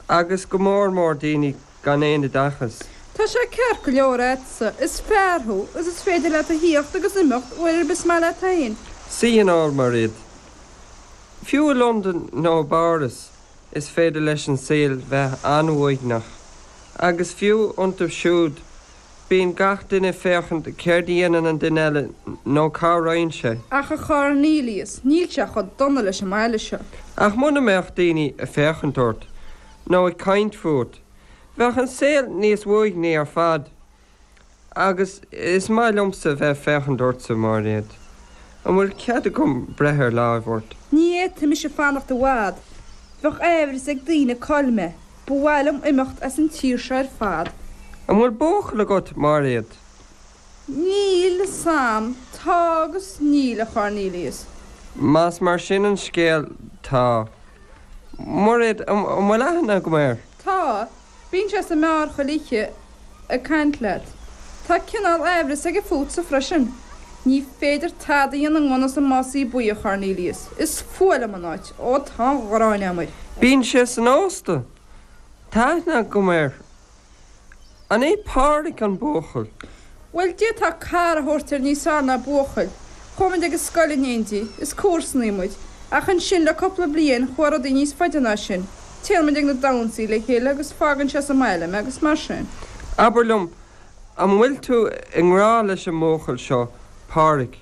agus go mór mór daoine gan aon oideachas. Tá sé ceart go leor agatsa, is fear thú, agus is féidir leat a thíocht agus imeacht uair ar bith is maith leat féin. Sí an uair Mairéad. Fiú i Londain nó i bPáras is féidir leis an saol bheith an-uaigneach, agus fiú iontu siúd, Bíonn gach duine ag féachaint céard a dhéanann an duine eile nó cá raghann sé. Ach a Chornelius, níl sé chomh dona leis an mbaile seo. Ach muna mbeadh daoine ag féachaint ort nó ag caint fút, bheadh an saol níos uaigní ar fad. Agus is maith liomsa bheith ag féachaint ortsa, Mairéad. An bhfuil cead agam breith ar láimh ort? Ní fhéadfaidh mise fanacht i bhfad. Bheadh aimhreas ag daoine cá bhfuil mé. Ba mhaith liom imeacht as an tír seo ar fad. An bhfuil buachaill agat, Mairéad? Níl a fhios a'm. Tá agus níl, a Chornelius. Más mar sin an scéal, tá. Mairéad, an bhfuil aithne agam air? Tá. Bíonn sé sa mbeár chuile oíche. ag caint leat. Tá cineál aimhreas aige fútsa freisin. Ní féidir tada a dhéanamh ngan fhios i Másaí Buí, a Chornelius. Is fuath liom an áit. Ó, tá an ghráin a'm air. Bíonn sé san ósta. Tá aithne agam air. An é Páraic an buachaill? Bhuel, d'fhéadfá cara a thabhairt air níos fearr ná buachaill. Chuaigh muid ag an scoil in éindí, is comharsanaí muid. Ach ansin, le cúpla bliain, chuaigh rudaí níos faide ná sin. Téann muid ag na damhsaí le chéile agus fágann sé sa mbaile mé agus mar sin. Abair liom, an bhfuil tú i ngrá leis an mbuachaill seo, Páraic?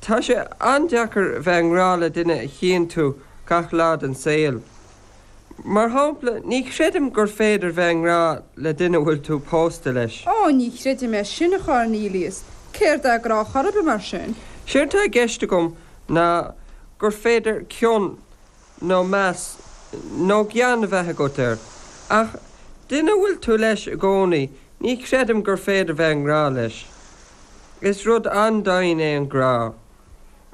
Tá sé an-deacair a bheith i ngrá le duine a chíonn tú gach lá den saol. Mar shampla, ní chreidim gur féidir bheith i ngrá le duine a bhfuil tú pósta leis. Ó, ní chreidim é sin, a Chornelius. Céard é grá chor ar bith, mar sin? Séard tá i gceist agam ná gur féidir cion nó meas nó gean a bheith agat air, ach duine a bhfuil tú leis i gcónaí, ní chreidim gur féidir bheith i ngrá leis. Is rud an-dian é an grá,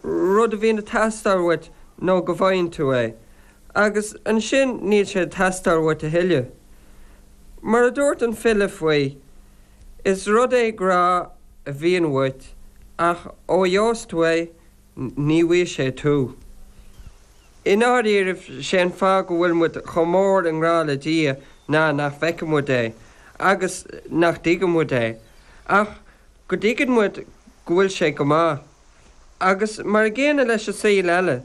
rud a bhíonn ag teastáil uait nó go bhfaigheann tú é, agus ansin níl sé ag teastáil uait a thuilleadh. Mar a dúirt an file faoi, is rud é grá a bhíonn uait ach ó gheobhas tú é, ní bhfaighidh sé tú. I ndáiríribh, sé an fáth go bhfuil muid chomh mór i ngrá le Dia ná nach bhfeiceann muid é, agus nach dtuigeann muid é, ach go dtuigeann muid go bhfuil sé go maith. Agus mar a gcéanna leis an saol eile,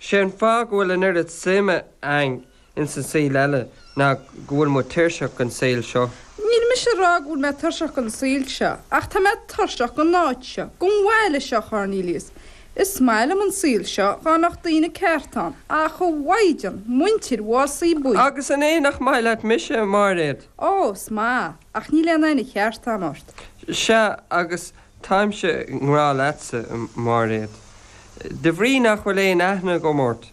sé an fáth go bhfuil an oiread suime againn ins an saoghal eile ná go bhfuil muid tuirseach den saoghal seo. Níl mise ag rádh go bhfuil mé tuirseach den saoghal seo, ach tá mé tuirseach den áit seo, den bhaile seo, a Chornelius. Is maith liom an saoghal seo dhá mbeadh daoine cearta ann, ach a Mhaighdean muintir Mhásaí Buí! Agus an é nach maith leat mise, a Mháiréad? Ó, is maith, ach níl aon aithne cheart a'm ort. Seadh, agus táimse i ngrádh leatsa, a Mháiréad, de bhrígh nach bhfuil aon aithne agam ort.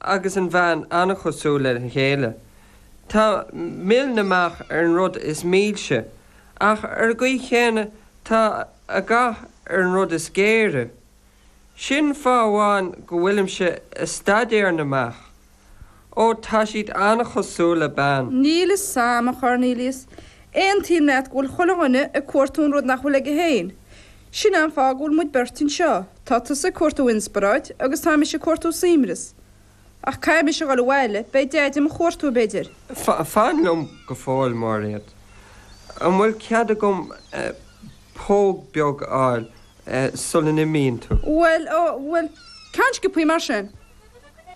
agus an bhean an-chosúil lena chéile. Tá mil na mbeach ar an rud is milse, ach ar an gcaoi chéanna tá a gath ar an rud is géire. Sin fáth amháin go bhfuilimse ag staidéar na mbeach. Ó, tá siad an-chosúil le bean. Níl fhios a'm, a Chornelius. Aontaím leat go bhfuil chuile dhuine ag cuartú an rud nach bhfuil aige féin. Sin é an fáth go bhfuil muid beirt anseo, tá tusa ag cuartú inspioráid agus tá mise ag cuartú suaimreas. Ach caithfidh mise a dhul abhaile, beidh Deaide mo chuartú, b'fhéidir. Fan liom go fóill, Máiréad. An bhfuil cead agam póg beag a fháil sula n-imíonn tú? Bhuel, bhuel, ceann sciopthaí mar sin.